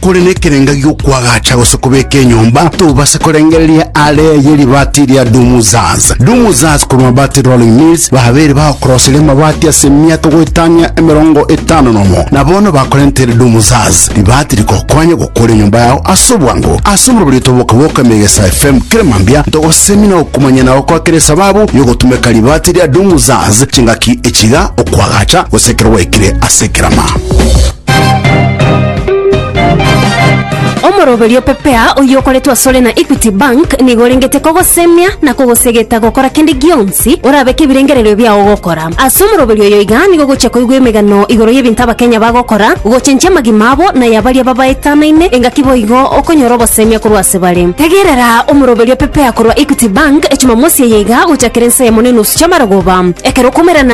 Kore nekerenga gi'okwagacha gose kobeka enyomba, tobase korengereria are ye ribaati ria Dumuzaz. Dumuzaz korwa Mabati Rolling Mills babeire bagokoroseria amabati ase emiaka goetania emerongo etano nomo, na bono bakorentere Dumuzaz ribaati rigokonye gokora enyomba yao ase obwango. Ase omorobori oito bw'Oboke bw'Okoemia Egesae FM, kera mambia ntogosemia na gokumanyia nao kwa kera esababu y'ogotumeka ribaati ria Dumuzaz, chingaki echiga, okwagacha, gose ekero gwaikire ase ekerama. Omoroberio o Pepea oyio okoretwe asore na Equity Bank nigo orengete kogosemia na kogosegeta gokora kende gionsi orabeke ebirengererio biao gokora. Ase omoroberio oyo iga nigo ogochia koigwa emegano igoro y'ebinto Abakenya bagokora, gochenchia amagima abo na ya baria babaetanaine, engaki boigo okonyora obosemia korwa ase bare. Tegerera Omoroberio o Pepea korwa Equity Bank Echumamosi eye iga gochakera ense yamo na enusu chi'amarogoba ekero okomerana.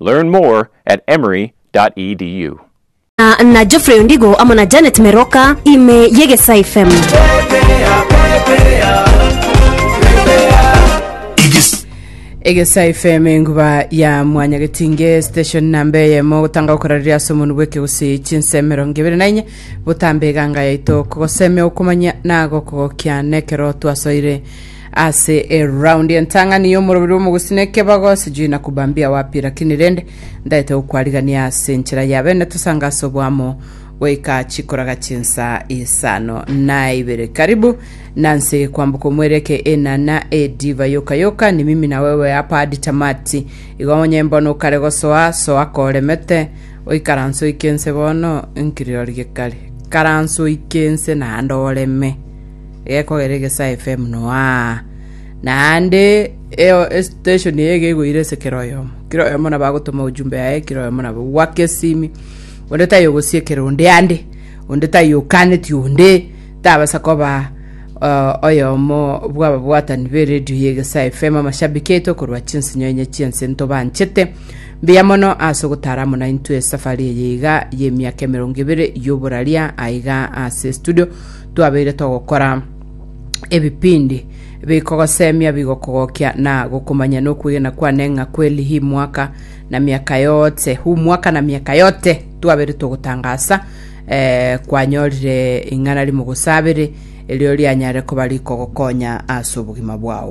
Learn more at emory.edu. na Geoffrey Ondigo amo na Janet Meroka ime y'Egesaai FM. Egesaai FM enguba ya mwanya getinge station namba eyemo gotanga gokora riria ase omonu bw'ekegusii chinsa emerongo ebere na inye botambe eganga yaito kogosemea okomanya nago kogokia nekero twasoire Ase eround entang'ani y'omoroberi omogusina ekebago sijui na kubambia wapi lakini rende ndaete gokwarigania ase enchera ya bene tosanga ase oboamo goika chikoraga chinsa isano na ibere karibu nanse kwambuka omwereke enana ediva yoka yoka ni mimi na wewe hapa hadi tamati igo onye mbono okare gosoa soa koremete oikaranse oike ense bono nkirori gekare karanse oike ense naende oreme gekogera egesaai FM noaa, naende eo- esteshoni eye gegoira ase kera oyomo, kera oyomo nabo agotoma ojumbe yaye, kera oyomo nabo gwake esimi, onde taiyo ogosiekera onde ande, onde taiyo okaneti onde, tabasa koba o- oyomo bw'ababwatani b'eredio ya egesaai FM, amashabiki aito korwa chinsinyo enye chi'ense ntobanchete, mbuya mono ase ogotara amo naintwe esafari eye iga y'emiaka emerongo ebere y'oboraria aiga ase estudio. twabeire togokora ebipindi bikogosemia bigokogokia na gokomanya nokwegena kwane ng'a kweli hii mwaka na miaka yote huu mwaka na miaka yote twabere togotangasa eh, kwanyorire ing'ana rimogosabere erio rianyare koba rikogokonya ase obogima bwao